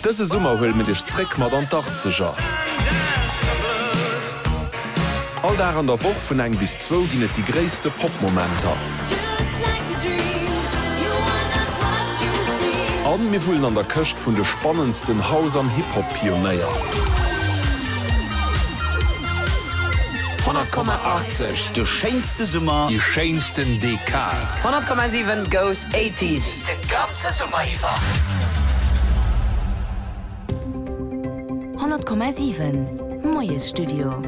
Dëse Summer huelen mir dech zréck mat an d'Achtzeger. All Dag an der Woch vun eng bis zwou ginn et déi gréisste Pop-Momenter. A mir wullen an der Këscht vun de spannendsten House an Hip-Hop-Pionéier. 100,80, de schéinste Summer, déi schéinsten Dekad. 100,7 goes 80s, de Gab Zesumme iwwer. 100,7 Moiesstudio.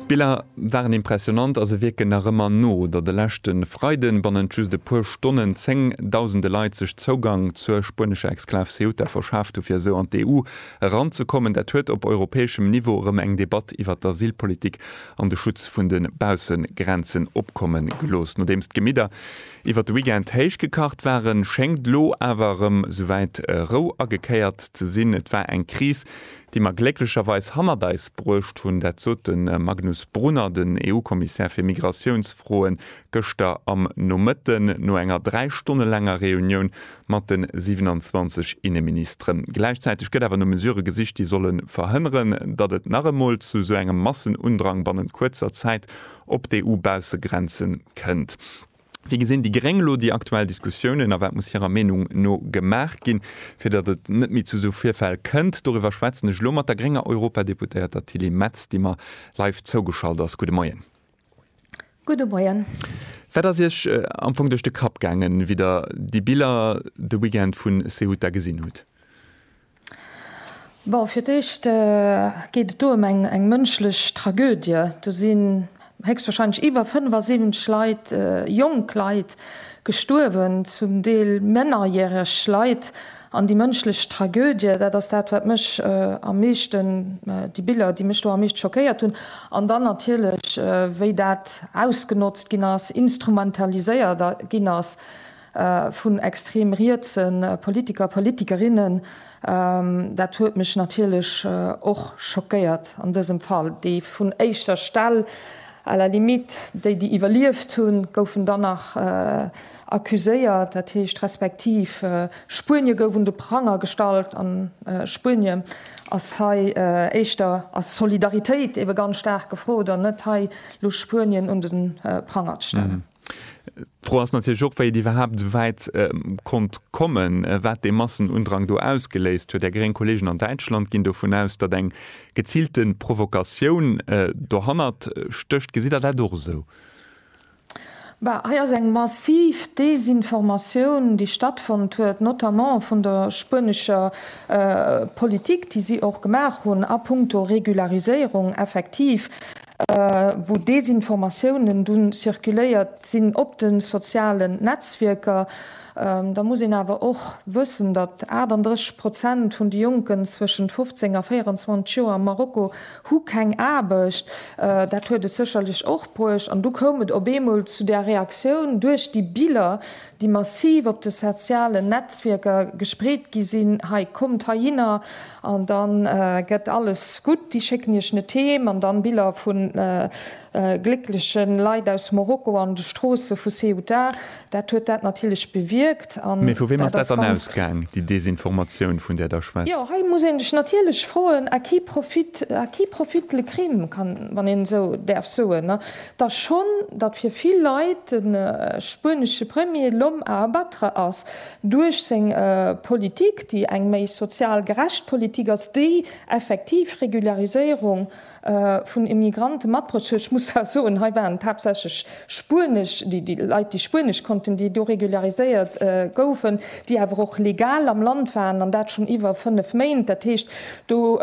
D'Biller waren impressionant a se wierken nach ëmmer no der de leschte Freiden bannent just e puer Stonnen zéng Dausende Leit sech Zougang zur spuenescher Exklav Ceuta verschaaft hu fir esou an d'EU eranzekommen. Dat huet op europäeschem Niveau erëm eng Debatt iwwert d'Asylpolitik an de Schutz vun de Baussegrenzen opkomme gelooss, nodeems d'Gemidder Iwwer de Weekend héich gekacht waren, schéngt elo awer erëm souwäit Rou agekéiert ze sinn. Et war eng Kris, déi mer glécklecherweis hannert eis bruecht hunn. Dat sot de Magnus Brunner, den EU-Kommissär fir Migratiounsfroen, gëschter am Nomëtten no enger dräi Stonne laanger Reunioun mat de 27 Inneministeren. Gläichzäiteg gëtt awer no Mesurë gesicht, déi solle verhënneren, datt et nach emol zu esou engem Massenundrang bannent kuerzer Zäit op d'EU-Baussegrenze kënnt. Wéi gesinn déi Gréng elo déi aktuell Diskussiounen a wat muss hirer Meenung no gemaach ginn, fir datt et net méi zu esou Virfäll kënnt? Doriwwer schwätzen ech elo mat der grénger Europadeputéierter Tilly Metz, déi mer live zougeschalt ass. Gudde Moien. Gudde Moien. Wat ass Iech am Fong duerch de Kapp gaangen, wéi Der déi Biller de Weekend vu Ceuta gesinn hutt? Bon, fir d'éischt geet et do ëm eng mënschlech Tragödie. Do sinn héchstwahrscheinlech iwwer 75 Leit, jonk Leit, gestuerwen, zum Deel mennerjäreg Leit. An déi mënschlech Tragödie, dat ass dat, wat mech am meeschten, déi Biller, déi mech do am meescht schockéiert hunn. An dann natierlech, wéi dat ausgenotzt ginn ass, instrumentaliséiert ginn ass. vun extrem rietse Politiker, Politikerinnen, dat huet mech natierlech och schockéiert an dësem Fall, déi vun éischter Stell, à la limite déi, déi iwwerlieft hunn, goufen dann nach accuséiert, dat heescht respektiv Spuenie gouf un de Pranger gestallt an Spuenie ass hei éischter, ass Solidaritéit ebe ganz staark gefrot an net hei lo Spuenien un de Pranger ze stellen. D'Fro ass natierlech och, wéi et iwwerhaapt esou wäit konnt kommen, wat dee Massenundrang do ausgeléist huet. Är gréng Kolleegen an Däitschland ginn dovun aus, datt eng geziilte Provokatioun dohannert stécht. Gesitt Der dat och esou? Bah, hei ass eng massiv Desinformatioun, déi stattfonnt huet, notamment vun der spuenescher Politik, déi si och gemaach hunn a puncto Regulariséierung. Effektiv, wou Desinformatiounen dunn zirkuléiert sinn op de sozialen Netzwierker. Da muss een awer och wëssen, datt 38 Prozent vun de Jonken zwëschent 15 a 24 Joer am Marokko hu keng Aarbecht. Dat huet et sécherlech och bruecht. An du koum et op eemol zu där Reaktioun duerch déi Biller, déi massiv op de sozialen Netzwierker gespreet gi sinn, hei kommt heihinner an da gëtt alles gutt, déi schécken iech net heem, an dann Biller vu gléckleche Leit aus Morocco an de Stroosse vu Ceuta, dat huet dat natierlech bewierkt. Mee vu weem ass dat dann ausgaang, déi Desinformatioun, vun där Der schwätzt? Jo, hei muss ee sech natierlech froen, à qui profite, à qui profite le crime, wann een esou däerf soen? Datt schonn, datt fir vill Leit de spuenesche Premier l'homme à abattre ass duerch seng Politik, déi eng méi sozial gerecht Politik ass, déi effektiv Regulariséierung vun Immigranten mat bruecht huet. Ech muss awer soen, hei waren et haaptsächlech spuenesch, déi Leit, déi spuenesch konnten, déi do regulariséiert goufen, déi awer och legal am Land waren, an dat schonn iwwer fënnef Méint. Dat heescht, do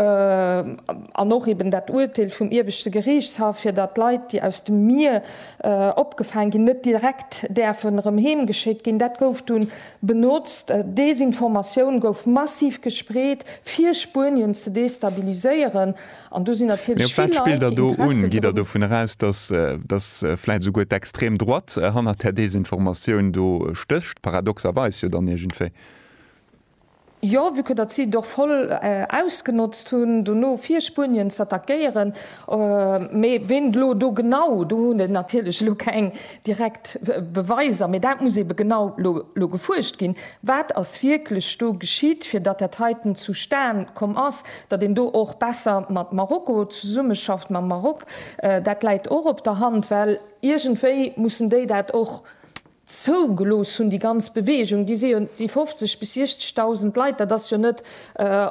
An och eben dat Uerteel vum Ieweschte Geriichtshaff, fir datt Leit, déi aus dem Mier opgefaang ginn, net direkt däerfen erëm heem geschéckt ginn, dat gouf dunn benotzt. Desinformatioun gouf massiv gespreet, fir Spuenien ze destabiliséieren. An do sinn natierlech vill Leit, déi Interesse dru. Mee op wat spillt Der do un? Geet Der dovun eraus, datt, datt vläicht esouguer d'Extreme Droite hannert där Desinformatioun do stécht? Paradoxerweis jo dann iergendwéi. Jo, vue que datt si et och voll ausgenotzt hunn, dono fir Spuenien z'attackéieren. Mee ween elo do genau, do hunn ech natierlech elo keng direkt Beweiser, mee dat muss eebe genau elo gefuerscht ginn, wat ass wierklech do geschitt, fir datt dat heiten zustan komm ass, datt een do och besser mat Marokko zesummeschafft, mam Maroc. Dat läit och op der Hand, well iergendwéi mussen déi dat och zougelooss hunn, déi ganz Beweegung, déi si jo, déi 50 bis 60.000 Leit, dat ass jo net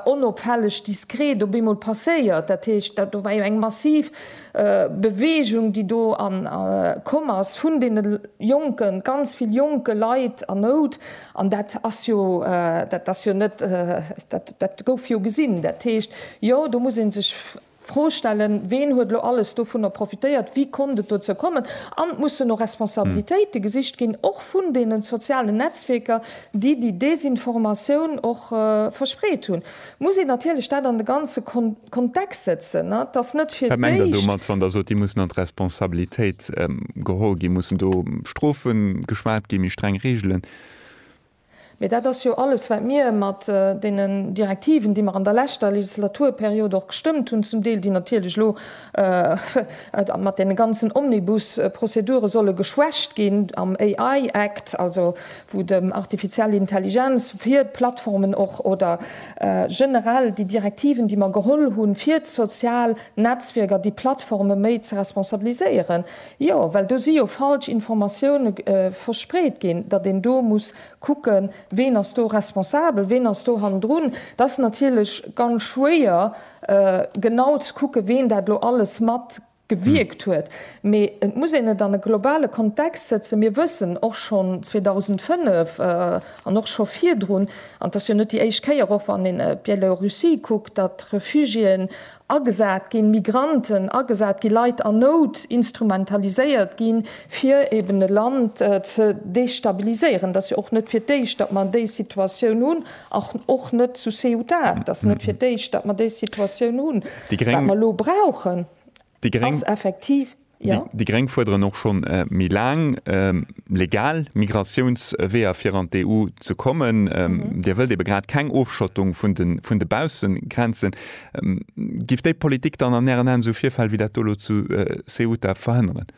onopfälleg, diskret op eemol passéiert. Dat heescht, do war jo eng massiv Beweegung, déi do komm ass vun deene Jonken, ganz vill jonke Leit an Nout. An dat ass jo, dat ass jo net, dat gouf jo gesinn. Dat heescht, jo, do muss ee sech. Fro stellen, ween huet elo alles dovunner profitéiert, wéi konnt et dozou kommen? An et mussen och Responsabilitéite gesicht ginn, och vun deene sozialen Netzwierker, déi déi Desinformatioun och verspreet hunn. Et muss een natierlech dat an de ganze Kontext setzen. Et ass net fir d'éischt. Wat mengt Der domat, wann Der sot, déi mussen an d'Responsabilitéit geholl ginn? Mussen do Strofe geschwat ginn, méi streng Reegelen? Mee dat ass jo alles, wat mir mat deenen Direktiven, déi mer an der leschter Legislaturperiod och gestëmmt hunn, zum Deel, déi natierlech elo mat deene ganzen Omnibus-Prozedure solle geschwächt ginn, am AI Act, also wou dem artificielle Intelligenz hir d'Plattformen och oder generell déi Direktiven, déi mer geholl hunn, fir d'sozial Netzwierker, déi Plattforme méi ze responsabiliséieren. Jo, well do si jo falsch Informatioune verspreet ginn, datt een do muss kucken, ween ass do responsabel, ween ass do hannendrun. Et ass natierlech ganz schwéier, genau ze kucken, ween dat elo alles mat gewierkt huet. Mee et muss een et an e globale Kontext sëtzen. Mir wëssen och schonn 2005 an och scho virdrun, an et ass jo net déi éischt Kéier, och wann een Bielorussie kuckt, datt Refugiéen agesat ginn, Migranten agesat ginn, Leit an Nout instrumentaliséiert ginn, fir eben e Land ze destabiliséieren. Et ass jo och net fir d'éischt, datt mer déi Situatioun hunn, och net zu Ceuta. Et ass net fir d'éischt, datt mer déi Situatioun hunn. Wat mer elo brauchen, ass effektiv. Déi Gréng fuerderen och schonn méi laang legal Migratiounsweeër fir an d'EU ze kommen. Dir wëllt ebe grad keng Ofschottung vun de Baussegrenzen. Giff déi Politik dann an Ären Aen esou Virfäll wéi dat do elo zu Ceuta verhënneren?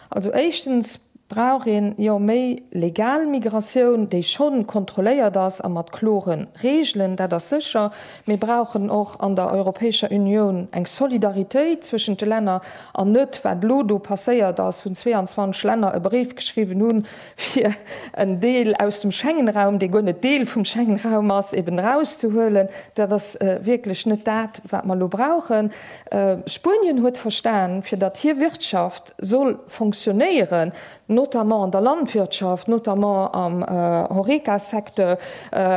Also éischtens Brauch een, jo, méi legal Migratioun, déi schonn kontrolléiert ass a mat kloren Reegelen, dat ass sécher. Mir brauchen och an der Europäescher Unioun eng Solidaritéit zwëschent de Länner an net, wat elo do passéiert ass, wou 22 Länner e Bréif geschriwwen hunn, fir en Deel aus dem Schengenraum, dee guer net Deel vum Schengenraum ass, eben erauszehuelen. Dat ass wierklech net dat, wat mer elo brauchen. Spuenien huet verstan, fir datt hir Wirtschaft soll fonctionnéieren, notamment an der Landwirtschaft, notamment am Horeca-Secteur,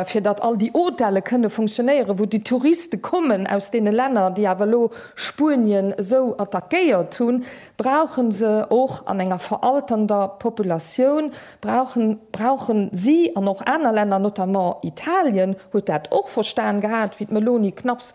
fir datt all déi Hôtele kënne fonctionnéieren, wou déi Touriste kommen aus deene Länner, déi awer elo Spuenien esou attackéiert hunn, brauche se och an enger veralternder Populatioun, brauchen, brauchen si an och aner Länner, notamment Italien huet dat och verstan gehat, wéi d'Meloni knapps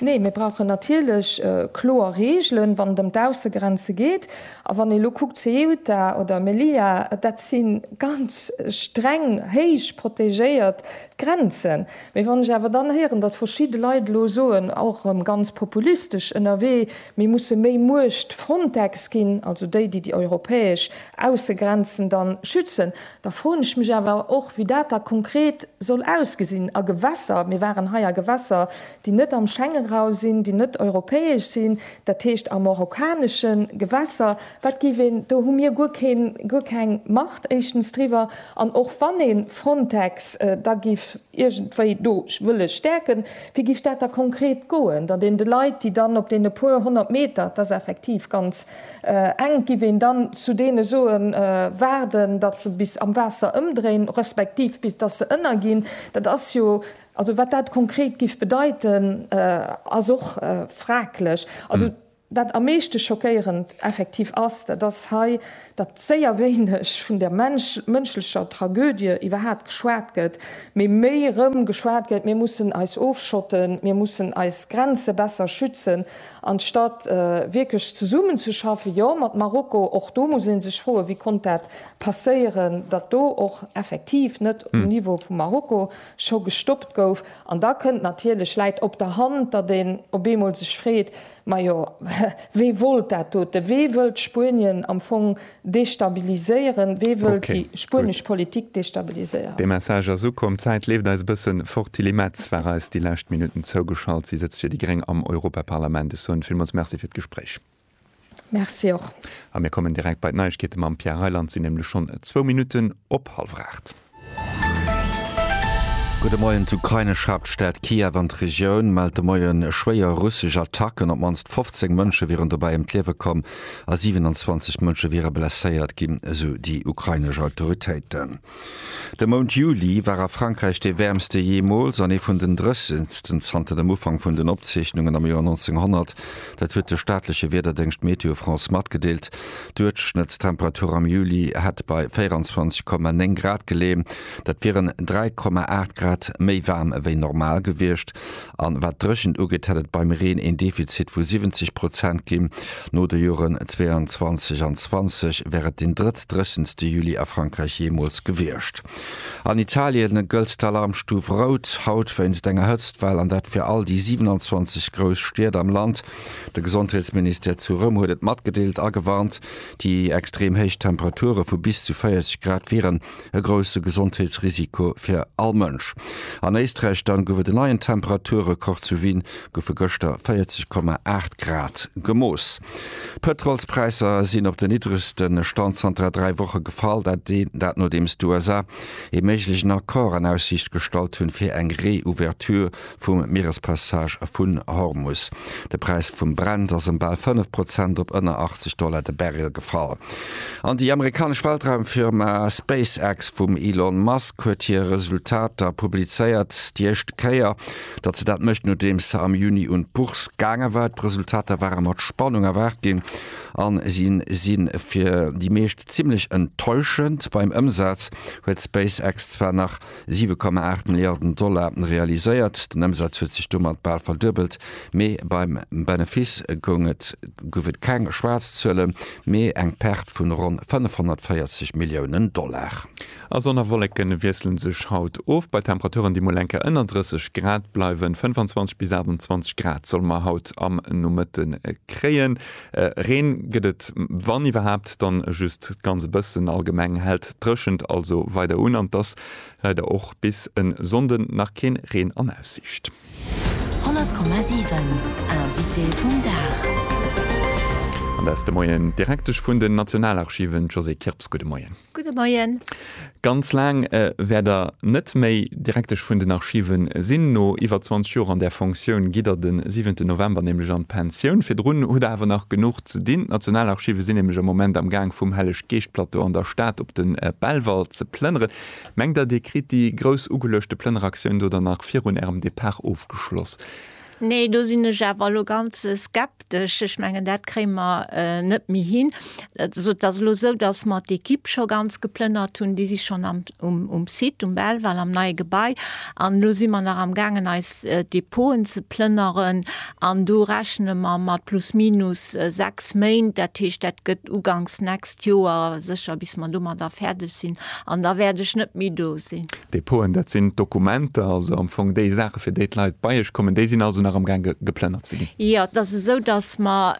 Nee, mir brauchen natierlech kloer Reegelen, wann et ëm d'Aussegrenze geet. A wann ee elo kuckt, Ceuta oder Melilla, dat si ganz streng, héich protegéiert Grenzen. Mee wann ech awer dann héieren, datt verschidde Leit elo soen, och erëm ganz populistesch ënnerwee, mir musse méi Muecht Frontex ginn, also déi, déi déi europäesch Aussegrenzen da schützen, Da froen ech mech awer och, wéi dat da konkret soll ausgesinn a Gewässer. Mir waren hei a Gewässer, déi net am Schengenraum sinn, déi net europäesch sinn, dat heescht a marokkanesche Gewässer. Wat géif een, do hu mir guer keen, guer keng Macht éischtens driwwer. An och wann ee Frontex da géif. iergendwéi do wëlle stäerken. Wéi géif dat da konkret goen, datt een de Leit, déi dann op deene puer honnert Meter, et ass effektiv ganz enk, géif een dann zu deene soen, waarden, datt se bis am Waasser ëmdréinen, respektiv bis datt se ënnerginn? Dat ass jo, also wat dat konkret géif bedeiten, ass och fraglech. Also Wat am meeschte schockéierend effektiv ass, dat ass hei, datt séier wéineg vun der mënschlecher Tragödie iwwerhaapt geschwat gëtt, mee méi erëm geschwat gëtt, mir mussen eis ofschotten, mir mussen eis Grenze besser schützen, anstatt wierklech zesummenzeschaffen, jo, mat Marokko. Och do muss ee sech froen, wéi konnt dat passéieren, datt do och effektiv net um Niveau vu Marokko scho gestoppt gouf. An da kënnt natierlech, läit op der Hand, datt een op eemol sech freet, Majo, wee wollt dat dote? Wee wëllt Spuenien am Fong destabiliséieren? Wee wëllt déi spuenesch Politik destabiliséieren? De Message ass ukomm. D'Zäit leeft eis e bëssen fort. D'Tilly Metz war eis déi lescht Minutten zougeschalt. Si sëtzt fir déi gréng am Europaparlament. Ech soen villmools Merci fir d'Gespréich. Merci och. A mir kommen direkt bei d'Neiegkeete mam Pierre Reyland. Et sinn nämlech schonn zwou Minutten op hallwer aacht. Gudde Moien. D'ukrainesch Haaptstad Kiew an d'Regioun mellt de Moie schwéier russesch Attacken. Op d'mannst 15 Mënsche wieren dobäi ëm d'Liewe komm a 27 Mënsche wiere blesséiert ginn, esou déi ukrainesch Autoritéiten. De Mount Juli war a Frankräich dee wäermste jeemools an ee vun den dréchensten zanter dem Ufank vun den Opzeechnungen am Joer 1900. Dat huet de staatleche Wiederdéngscht Météo France matgedeelt. Duerchschnëttstemperatur am Juli hätt bei 24,9 Grad geleeën. Dat wieren 3,8 Grad méi waarm ewéi normal gewiescht. An wat d'Dréchent ugeet, hätt et beim Reen een Defizit vu 70 Prozent ginn. No de Joren 22 an 20 wär et deen drëttdréchenste Juli a Frankräich jeemools gewiescht. An Italien gëllt d'Alarmstuf rout haut wéinst enger Hëtztwell, an dat fir all déi 27 grouss Stied am Land. De Gesondheetsministère zu Roum huet et matgedeelt a gewarnt. Déi extrem héich Temperature vu bis zu 40 Grad wieren e grousse Gesondheetsrisiko fir all Mënsch. An Éisträich dann gouf et en neien Temperaturrekord, zu Wien goufe gëschter 40,8 Grad gemooss. D'Pëtrolspräisser sinn op den niddregste Stand zanter dräi Woche gefall, dat nodeems d'USA ee méiglechen Accord an Aussiicht gestallt hunn, fir eng Reouverture vum Mierespassage vun Hormus. De Präis vum Brent ass ëm bal 5 Prozent op ënner 80 Dollar de Barrel gefall. An déi amerikanesch Weltraumfirma SpaceX vum Elon Musk huet hir Resultater publizéiert. Déi éischte Kéier, datt se dat mécht, nodeems se am Juni un d'Bourse gaange war. D'Resultater ware mat Spannung erwaart ginn a si si fir déi meescht zimmlech enttäuschend. Beim Ëmsaz huet SpaceX zwar nach Siwe Komma aacht Milliarden Dollar realiséiert, den Ëmsaz huet sech domat bal verduebelt, mee beim Benefiss goung et, gouf et keng schwaarz Zuele mee eng Perte vun ronn 540 Milliounen Dollar. A Sonn a Wolleken wiesselen sech haut of, bei Temperaturen déi mol eng Kéier ënner 30 Grad bleiwen. 25 bis 28 Grad solle mer haut am Nomëtte kréien. Reen gëtt et wann iwwerhaapt dann just ganz e bëssen. Allgemeng hält d'Dréchent also weider un an et ass leider och bis en Sonnden nach keen Reen an Aussiicht. 100,7 Invité vum Dag. An dat ass de Moien direktesch vun den Nationalarchiven, d'Josée Kirps. Gudde Moien. Gudde Moien. Ganz laang wäert Der net méi Direktesch vun den Archive sinn. No iwwer 20 Joer an där Fonctioun gitt Der de siwente November nämlech an d'Pensioun. Virdrun hutt Der awer nach genuch ze dinn. D'Nationalarchive sinn nämlech am Moment am Gaang vum Helleg-Geescht-Plateau an der Stad op de Belval ze plënneren. Mengt Der, Dir kritt déi grouss ugeluechte Plënneraktioun do dann nach virun Ärem Depart ofgeschloss? Nee, do sinn ech awer elo ganz skeptesch. Ech mengen, dat kréie mer net méi hin. Also et ass elo esou, datt mer d'Ekipp scho ganz geplënnert hunn. Déi si schonn um Site, um Belval, am neie Gebai. An elo si mer nach amgaangen, eis Depoten ze plënneren. An do rechne mer mat plus minus sechs Méint. Dat heescht, dat gëtt uganks nächst Joer sécher, bis mer domadder fäerdeg sinn. An da wäert ech net méi do sinn. Depoten, dat sinn d'Dokumenter, also am Fong déi Saache fir déi d'Leit bei iech kommen, déi sinn also nach amgaange geplënnert ze ginn? Jo, et ass esou, datt mer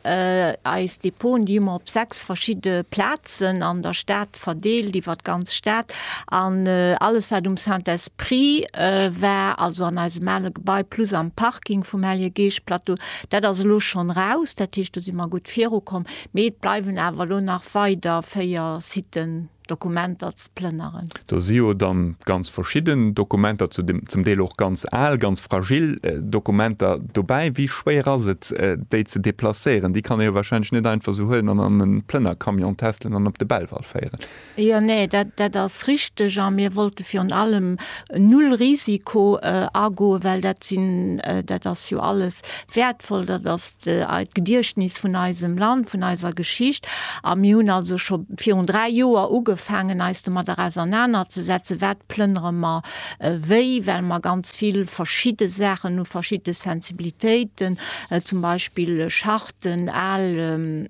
eis Depoten, déi hu mer op sechs verschidde Plazen an der Stad verdeelt, iwwer d'ganz Stad. An alles wat um Saint-Esprit war, also an eisem ale Gebai plus am Parking vum Hellege Geescht Plateau, dat ass elo schonn raus. Dat heescht, do si mer gutt virukomm. Mee et bleiwen awer elo nach weider véier Siten. Dokumenter ze plënneren. Do si jo dann ganz verschidden Dokumenter, zu dem zum Deel och ganz al, ganz fragil Dokumenter dobäi. Wéi schwéier ass et, déi ze deplacéieren? Déi kann ee jo warscheinlech net einfach esou huelen an an e Plënnercamion testelen an op de Belval féieren. Jo, nee, dat, dat ass richteg. A mir wollte virun allem null Risiko agoen, well dat sinn, dat ass jo alles Wäertvoll, dat ass d'Gediechtnis vun eisem Land, vun eiser Geschicht. A mir hunn also scho virun dräi Joer ugefaangen, eis domatter ausernanerzesetzen, Wat plënnere mer wéi? Well mer ganz vill verschidde Saachen hu, verschidde Sensibilitéiten, zum Beispill Charten, al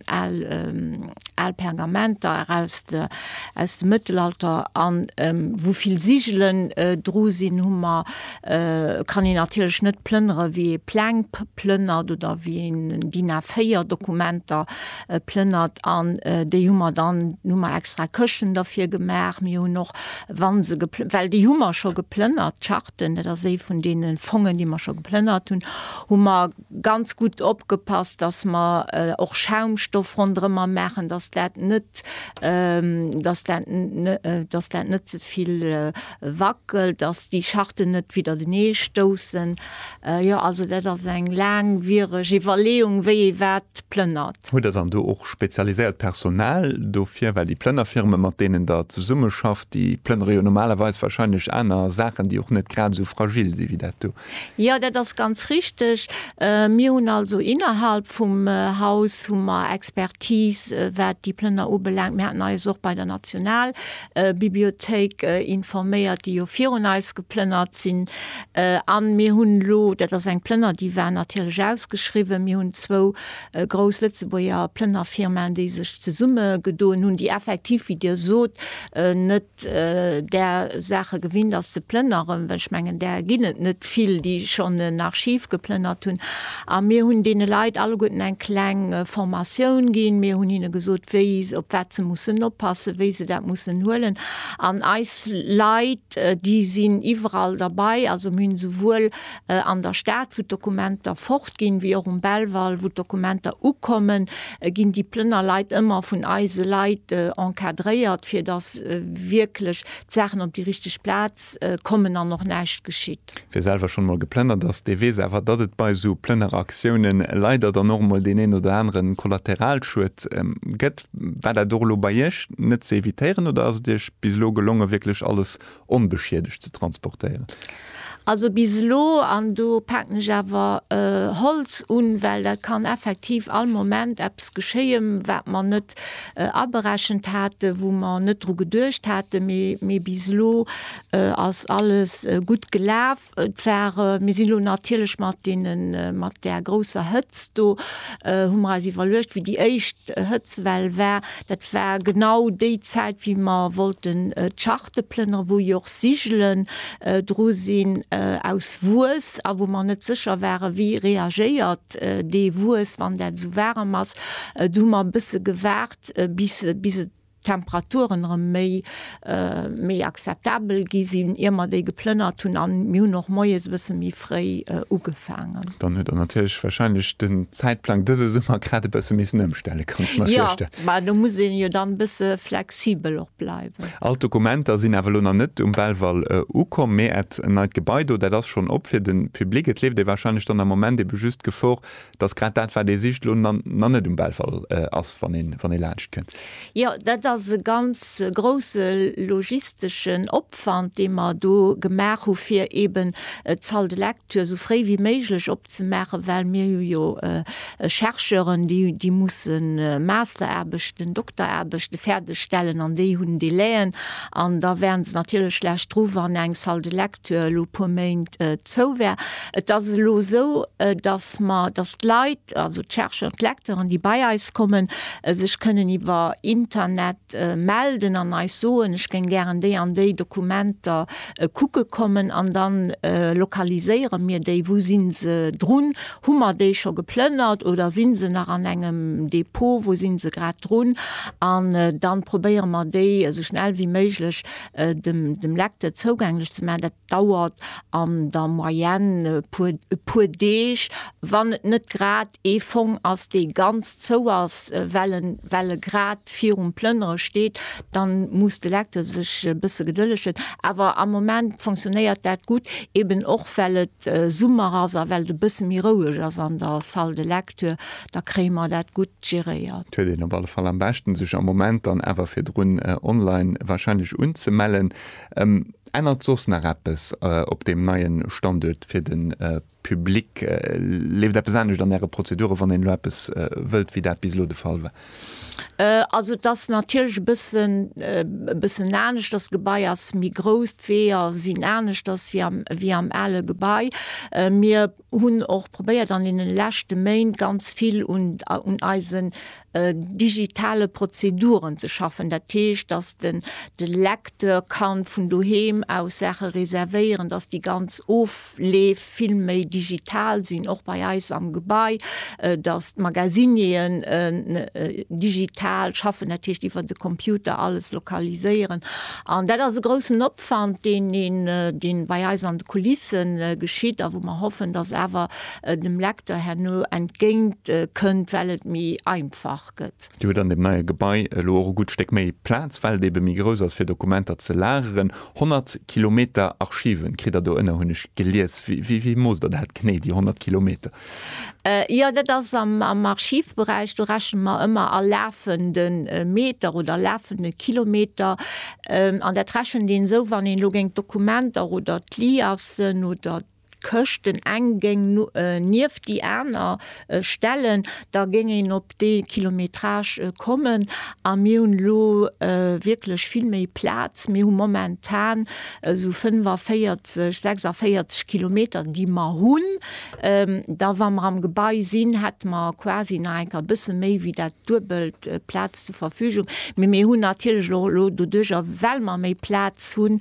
Pergamenter aus dem Mëttelalter, a wou vill Sigelen dru sinn, hu mer kann een natierlech net plënnere wéi ee Pläng plënnert oder wéi een DIN A 4 Dokumenter plënnert an déi hu mer dann, hu mer extra Këschten derfir gemaach. Mir hunn och, wa se, well déi hu mer scho geplënnert, d'Charten, dat ass ee vun deene Fongen, déi mer scho geplënnert hunn, hu mer ganz gutt opgepasst, datt mer och Schaumstoff ronderëmmer maachen, datt dat net, datt dat net ze vill. Wackel, dass déi Charten net widdertenee stoussen. Jo, also dat ass eng laangwiereg Iwwerleeung, wéi ee wat plënnert. Hutt Der dann do och spezialiséiert Personal dofir? Well déi Plënnerfirme mat deenen Der zesummeschafft, déi plënnere jo normalerweis wahrscheinlech aner Saachen, déi och net grad esou fragil si wéi dat do. Jo, dat ass ganz richteg. Mir hunn also innerhalb vum Haus hu mer Expertise wat déi Plënner ubelaangt. Mir haten eis och bei der Nationalbibliothéik informéiert, déi jo virun eis geplënnert sinn. A mir hunn elo, dat ass eng Plënner, déi war natierlech ausgeschriwwen, mir hunn zwou grouss Lëtzebuerger Plënnerfirmaen, déi sech zesummegedoen hunn, déi effektiv, wéi Dir sot, net där Saache gewinnt ass ze plënneren, well ech mengen, där ginn et net vill, déi schonn en Archiv geplënnert hunn. A mir hunn deene Leit alleguerten eng kleng Formatioun ginn. Mir hunn hinne gesot, wéi, op wat se mussen oppassen, wéi se dat mussen huelen. An eis Leit, déi sinn iwwerall derbei, also mir hunn souwuel an der Stad, wou d'Dokumenter fortginn, wéi och um Belval, wou d'Dokumenter ukommen, ginn déi Plënnerleit ëmmer vun eise Leit encadréiert, fir dass wierklech d'Saachen op déi richteg Plaz kommen an och näischt geschitt. Wie selwer schonn emol geplënnert ass, dee weess awer, datt et bei esou Plënneraktioune leider dann och emol deen een oder anere Kollateralschued gëtt. War dat och elo bei Iech net ze evitéieren oder ass et Iech bis elo gelongen, wierklech alles onbeschiedegt ze transportéieren. Also bis elo, an do paken ech awer Holz un, well dat kann effektiv all Moment eppes geschéie wat mer net aberechent haten, wou mer net dru geduecht haten, mee bis elo ass alles gutt gelaf. Et war, mir sinn elo natierlech mat deenen, mat där grousser Hëtzt do, hu mer eis iwwerluecht, wéi déi éischt Hëtzwell war, dat war genau déi Zäit, wéi mer wollten d'Charte plënnere wou jo och Sigelen dru sinn aus Wues a wou mer net sécher ware wéi reagéiert dee Wues, wann dat esou waarem ass. Do hu mer e bësse gewaart, bis, bis et d'Temperaturen erëm méi méi akzeptabel gi sinn, ier mer déi geplënnert hunn, an mir hunn och moies e bësse méi fréi ugefaangen. Dann huet Der natierlech warscheinlech den Zäitplang dëse Summer grad e bësse missen ëmstellen, kann ech mer virstellen. Jo, mä do muss ee jo dann e bësse flexibel och bleiwen. All d'Dokumenter sinn awer elo nach net um Belval ukomm, mä Äert neit Gebai do, dat ass schonn op fir de Public. Et leeft ee warscheinlech dann am Moment ebe just Gefor, Et ass grad dat, wat ee sicht, elo nach net um Belval ass, wann ee laanscht kënnt. Jo, dat ass e ganz grousse logisteschen Opwand, dee mer do gemaach hu fir eeben d'Salle de lecture esou fréi wéi méiglech opzemaachen, well mir hu jo Chercheuren, déi musse Masteraarbechten, Dokteraarbechte fäerdeg stellen an déi hunn Délai'en an da wären se natierlech schlecht dru wann eng Salle de lecture, elo puer Méint zou war. Et ass elo esou, datt mer, datt d'Leit, also d'Chercheurs, d'Lecteuren, déi bei eis kommen, sech kënnen iwwer Internet melden an eis soen, ech géing gären déi an déi Dokumenter kucke kommen an dann lokaliséiere mir déi, wou si se drun, hu mer déi scho geplënnert oder si se nach an engem Depot, wou si se grad drun, an dann probéiere mer déi esou schnell wéi méiglech dem Lecteur zougänglech ze maachen, dat dauert an der Moyenne e puer Deeg, wann et net grad ee Fong ass, dee ganz zou ass, well e grad virum Plënnere steet. Da muss de Lecteur sech e bësse gedëllegt hunn. Awer am Moment fonctionnéiert dat gutt, eben och well et Summer ass a well et e bësse méi roueg ass an der Salle de Lecture. da kréie mer dat gutt geréiert. Huet een op alle Fall am beschten sech am Moment dann awer virdrun online wahrscheinlech unzemellen. Ännert soss nach eppes op deem neien Standuert fir den Public? Leeft eppes anescht an äre Prozeduren wann een elo eppes wëllt wéi dat bis elo de Fall war? Also et ass natierlech e bëssen e bëssen aneschters. D'Gebai ass méi grouss, d'Weeër sinn aneschters wéi am ale Gebai. Mir. hunn och probéiert an deene leschte Méint ganz vill un eisen digitale Prozeduren ze schaffen. Dat heescht, dass den de Lecteur ka vun doheem aus Saache reservéieren, dass déi ganz Ofleef vill méi digital sinn, och bei eis am Gebai, dass d'Magazinieren digital schaffen, dat heescht iwwer de Computer alles lokaliséieren. An dat ass e groussen Opwand, deen een, deen bei eis an de Kulisse geschitt a wou mer hoffen, dass awer dem Lecteur herno entgéint kënnt, well et méi einfach gëtt. Dir hutt an deem neie Gebai elo och e gutt Stéck méi Plaz, well et ebe méi grouss ass, fir Dokumenter ze lageren. 100 Kilometer Archiven kritt Der do ënner, hunn ech gelies. Wéi moosst Der dat genee, déi 100 Kilometer? Jo, dat ass am Archivberäich, do rechne mer ëmmer a lafende Meter oder lafende Kilometer. An dat rechent een esou, wann een elo géing d'Dokumenter oder d'Liassen oder d'Këschten eng géing nieft déi aner stellen, da géing een op dee Kilometrage kommen. A mir hunn elo wierklech vill méi Plaz. Mir hu momentan esou 45, 46 Kilometer, déi mer hunn. Da wa mer am Gebai sinn, hätte mer quasi nach eng Kéier e bësse méi wéi dat Duebelt Plaz zur Verfügung. Mee mir hunn natierlech och elo doduerjer, well mer méi Plaz hunn,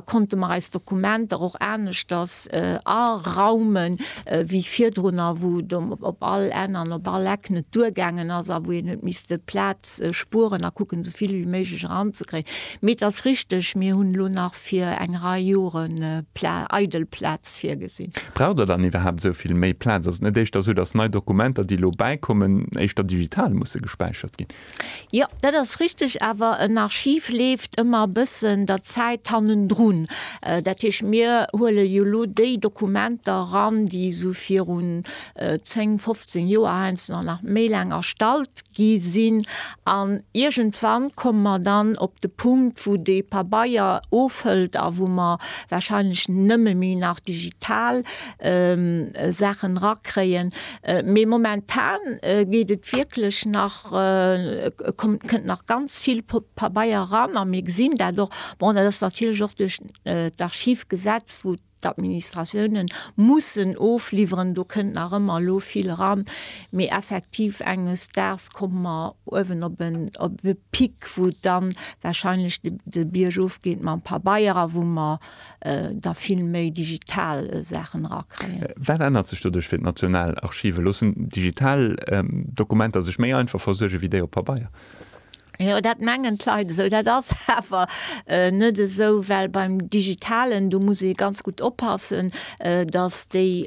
konnte mer eis Dokumenter och aneschters araumen, wéi virdrunner, wou et op all Enn an op all Eck net duergaangen ass a wou een huet misste Plaz spueren a kucken, esou vill wéi méiglech eranzekréien. Mee et ass richteg, mir hunn elo nach, fir eng Rei Jore Pla eidel Plaz virgesinn. Braucht Der dann iwwerhaapt esou vill méi Plaz? Ass et net éischter esou, datt nei Dokumenter, déi elo bäikommen, éischter digital musse gespäichert ginn? Jo, dat ass richtig, awer en Archiv leeft ëmmer e bëssen der Zäit hannendrun. Dat heescht, mir huele jo elo déi Dokumenter eran, déi esou virun 10, 15 Joer heiansdo nach nach méi laang erstallt gi sinn. An iergendwann komme mer dann op de Punkt, wou dee Pabeier ofhëlt a wou mer warscheinlech nëmme méi nach digital Saachen erakréien. Mee momentan geet et wierklech nach, kommt, kënnt nach ganz vill Pabeier eran a mir gesinn dat och. Bon, dat ass natierlech och duerch d'Archivgesetz, wou D'Administratiounen mussen ofliwweren, do kënnt nach ëmmer elo vill eran, mee effektiv enges Daags komme mer uewen op en op e Pic, wou dann wahrscheinlech de Bierg ofgeet mam Pabeier a wou mer da vill méi digital Saachen erakréien. Wat ännert sech doduerch fir d'Nationalarchive? Loossen digital Dokumenter sech méi einfach versuerge wéi déi op Pabeier? Jo, dat mengen d'Leit esou. Dat ass awer net esou, well beim Digitalen, do muss ee ganz gutt oppassen, datt déi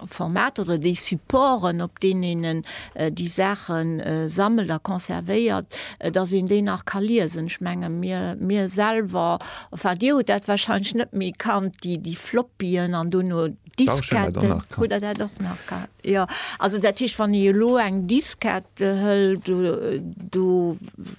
Formater oder déi Supporten, op deenen een déi Saache sammelt a conservéiert, datt een déi nach ka liesen. Ech menge mir, mir selwer, enfin Dir hutt dat warscheinlech net, mee kannt déi Floppyen an duerno, Disketten hutt Der dat och nach gehat? Jo. Also dat heescht, wann ee elo eng Diskett hëlt, do,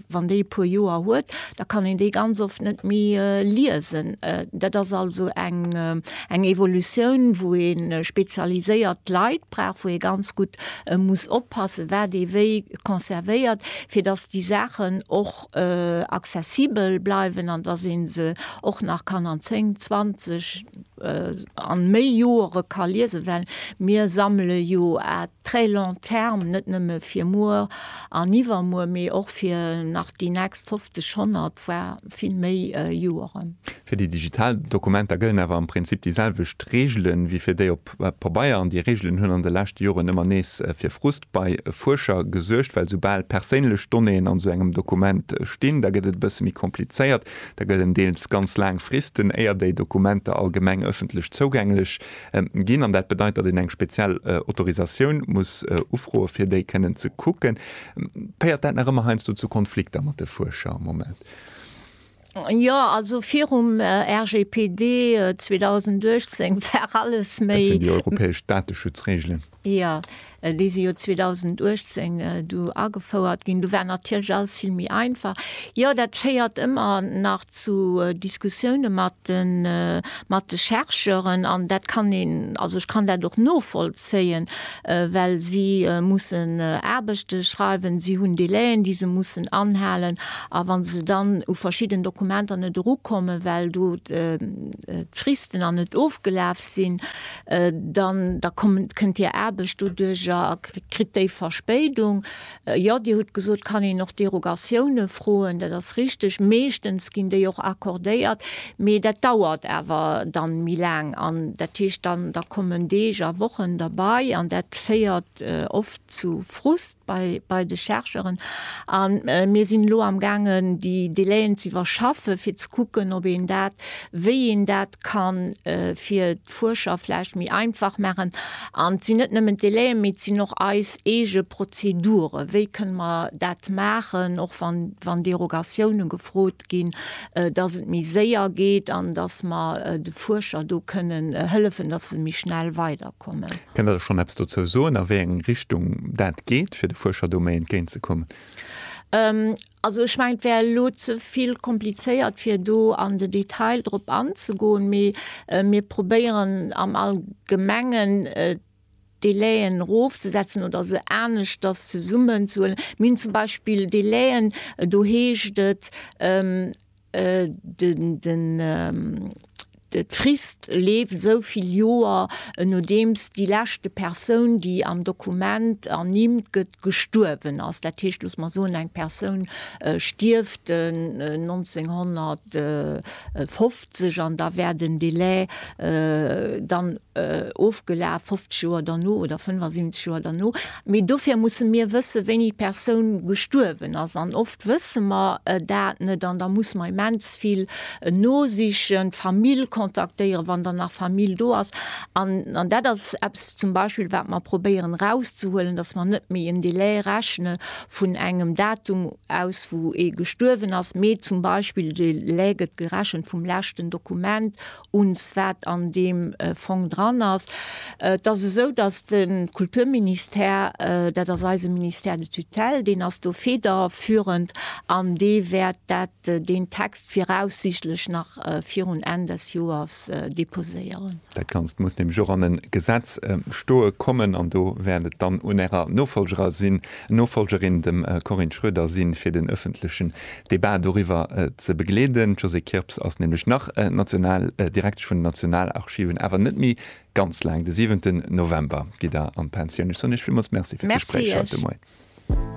wann déi e puer Joer huet, da kann een déi ganz oft net méi liesen. Dat ass also eng eng Evolutioun, wou ee spezialiséiert Leit brauch, wou ee ganz gutt muss oppassen, wat ee wéi conservéiert, fir datt déi Saachen och accessibel bleiwen an datt ee se och nach kann an zéng, zwanzeg, an méi Joere ka liesen, well mir sammele jo à très long terme, net nëmme fir muer an iwwermuer, mee och fir nach déi nächst 50, 100, voire vill méi Joeren. Fir déi digital Dokumenter gëllen awer am Prinzip déi selwecht Reegelen, wéi fir déi op Pabeier. An déi Reegelen hunn an de leschte Joren ëmmer nees fir Frust bei Fuerscher gesuergt, well soubal perséinlech Donnéeën an esou engem Dokument stinn, da gëtt et e bësse méi komplizéiert. Da gëllen deels ganz laang Fristen, éier déi Dokumenter allgemeng ëffentlech zougänglech ginn. An dat bedeit, datt een eng speziell Autorisatioun muss ufroe fir déi kënnen ze kucken. Féiert dat nach ëmmer heiansdo zu Konflikter mat de Fuerscher am Moment? Jo, also virum RGPD 2018 war alles méi. Dat sinn déi europäesch Dateschutzreegelen. Jo, déi si jo 2018 du agefouert ginn. Du war natierlech alles vill méi einfach. Jo, dat féiert ëmmer nach zu Diskussioune mat de, mat de Chercheuren. An dat kann een, also ech kann dat och novollzéien, well si mussen Aarbechte schreiwen, si hunn Délai'en, déi se mussen anhalen. A wa se dann u verschidden Dokumenter net erukommen, well do d'Fristen an net ofgelaf sinn, Dann da kommt, kënnt Dir Aarbecht doduerch a kritt déi Verspéidung. Jo, Dir hutt gesot, kann een och Derogatioune froen. Dat ass richteg. Meeschtens ginn déi och accordéiert, mee dat dauert awer dann méi laang. An dat heescht dann, da kommen Deeg a Wochen derbei an dat féiert oft zu Frust bei, bei de Chercheuren. A mir sinn elo am gaangen déi Délaiën z'iwwerschaffe fir ze kucken, ob een dat, wéi een dat kann fir d'Fuerscher vläicht méi einfach maachen. An et sinn net nëmmen d'Délaien, mee et sinn och eis eege Prozeduren. Wéi kënne mer dat maachen, och wann, wann Derogatiounen gefrot ginn, dass et méi séier geet an dass mer de Fuerscher do kënnen hëllefen, dass se méi schnell weiderkommen? Kënnt Der schonn eppes dozou soen, a wéi eng Richtung dat geet, fir de Fuerscher do méi entgéint ze kommen? Also ech mengen, et wär elo ze vill komplizéiert, fir do an de Detail drop anzegoen, mee mir probéieren am Allgemengen d'Délaien erofzesetzen oder se aneschters zesummenzehuelen. Mir hunn zum Beispill Délaien, do heescht et, D'Frist leeft esou vill Joer, nodeems déi leschte Persoun, déi am Dokument ernimmt gëtt, gestuerwen ass. Dat heescht, loosse mer soen, eng Persoun stierft 1950, an da wär den Delai dann ofgelaf, 50 Joer derno oder 75 Joer derno. Mee dofir musse mir wësse wéini d'Persoun gestuerwen ass. An oft wësse mer dat net an da musse mer immens vill nosichen, d'Famill kontaktéieren, wann dann nach Famill do ass. An dat ass eppes zum Beispill wat mer probéieren erauszehuelen, datt mer net méi en Delai rechne vun engem Datum aus wou ee gestuerwen ass, mee zum Beispill de Delai gëtt gerechent vum leschten Dokument uns, wat an deem Fong dran ass. Et ass esou, dass de Kulturministère, dat ass eise Ministère de tutelle, deen ass do federführend an dee wäert dat, deen Text viraussichtlech nach virun Enn des Joers deposéieren. Dat Ganzt muss nämlech och an e Gesetz stoe kommen an do wäert et dann un Ärer Nofolgerin, dem Corinne Schroeder, sinn, fir den öffentlechen Debat doriwwer ze begleeden. D'Josée Kirps ass nämlech nach national Direktesch vun den Nationalarchiven, awer net méi ganz laang. De 7 November gitt Der an d'Pensioun. Ech soen Iech villmools Merci fir d'Gespréich haut de Moien.